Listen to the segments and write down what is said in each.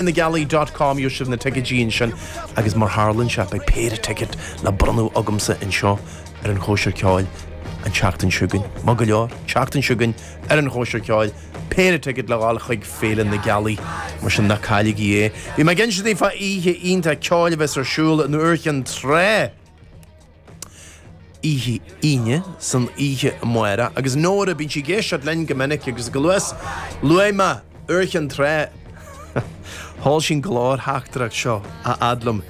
Féile na Gealaí dot com Gheobhaidh sibh na ticéidí ansin agus mar tharlann sé beidh péire ticéad le bronnadh agamsa anseo ar an Chóisir Ceoil an tseachtain seo chugainn. Maith go leor, tseachtain seo chugainn ar an Chóisir Ceoil, péire ticéad le fáil chuig Féile na Gealaí, mar sin ná cailligí é. Bhí mé ag insint daoibh fá oíche iontach ceoil a bheas ar siúl in Iúr Chinn Trá! oíche Aoine, san oíche amárach, agus Nóra, bíonn sí ag éisteacht linn go minic, agus chomh luath is luaigh mé Iúr Chinn Trá, sheol sí an ghlórtheachtaireacht seo a fhad liom,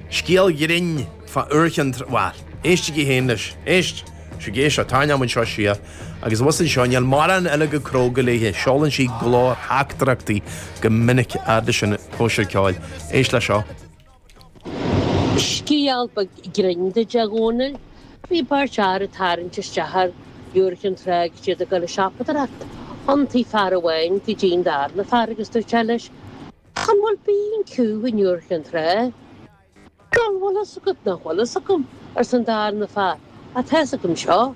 scéal grinn fá Iúr Chinn Trá, bhuel, éistigí féin leis, éist, sí ag éisteacht, tá an fheamainn seo siar, agus abhus anseo, níl mórán eile chomh cróga léithe, seolann sí glórtheachtaireachtaí go minic, a fhad leis an Chóisir ceoil, éist leis seo. Scéal beag grinn duit a Dhónaill bhí beirt fhear ag tarraint isteach ar Iúr Chinn Trá is iad ag dul a siopadóireacht. Thiontaigh fear amháin go dtí an darna fear agus dúirt sé leis An bhfuil B&Q in Iúr Chinn Trá? Bhuel, bhfuil a fhios agat nach bhfuil fhios agam, arsa an darna fear, ach tá fhios agam seo.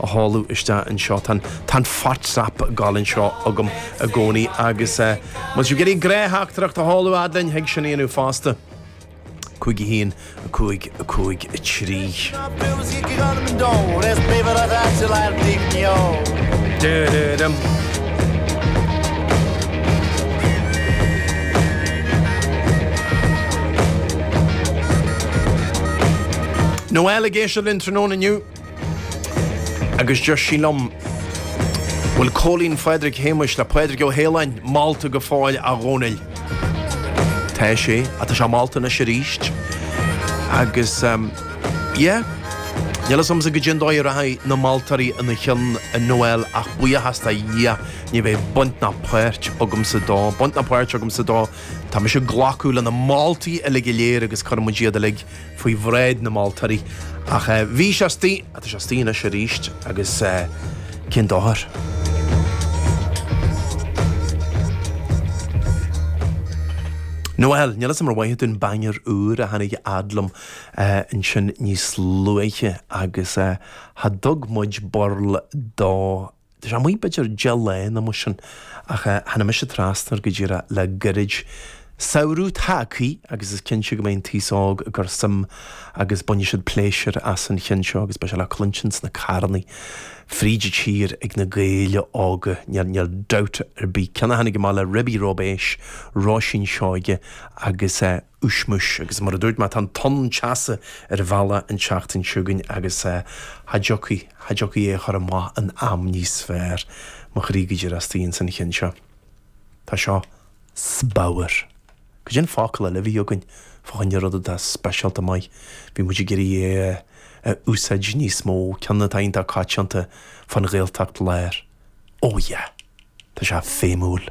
a sheoladh isteach anseo. Tá an Whatsapp ag dul anseo agam i gcónaí agus má tá tú ag iarraidh glórtheachtaireacht a sheoladh a fhad linn, thig sin a dhéanamh fosta. 51 5 5 3. Noel ag éisteacht linn tráthnóna inniu. Agus deir sí liom, bhfuil Cóilín Phádraig Shéamuis le Pádraig Ó hAoláin, molta go fóill, a Dhónaill. Tá sé, tá sé molta anois arís. Agus, yeah, níl a fhios agamsa goidé an dóigh a rachaidh na moltóirí ina chionn a Noel ach buíochas do Dhia, ní bheidh baint ná páirt agamsa dó. Baint ná páirt agamsa dó, tá mise ag glacadh leis na moltaí uilig go léir agus cuireann muid iad uilig faoi bhráid na moltóirí. Ach bhí sé astoigh, tá sé astoigh anois arís, agus cén dochar? Noel, níl 'fhios a'm ar mhaith dúinn banger úr a tháinig a fhad liom ansin níos luaithe agus cha dtug muid burl dó. Tá sé amuigh b'fhéidir deich lá nó mar sin ach tháinig mise trasna air go díreach le gairid. Samhradh tagtha agus is cinnte go mbeidh an t-aos óg ag cur suim agus bainfidh siad pléisiúr as an cheann seo agus beidh sé le cluinstin sna carrannaí fríd an tír ag na Gaeil óga, níl dabht ar bith. Ceann a tháinig amach le ribí róibéis, Róisín Seoige agus. uismis. Agus mar a dúirt mé, tá an tonn teasa ar an bhealach an tseachtain seo chugainn agus cha dtiocfaí, cha dtiocfaí é a chur amach in am níos fearr. Mo chroí go díreach istigh ann san cheann seo. Tá seo spadhar. Cad é an focal eile a bhí againn fá choinne rud atá speisialta maith? Bhí muid ag iarraidh é a úsáid níos mó, ceann atá iontach coitianta fán Ghaeltacht Láir. Ó yeah! Tá sé feidhmiúil.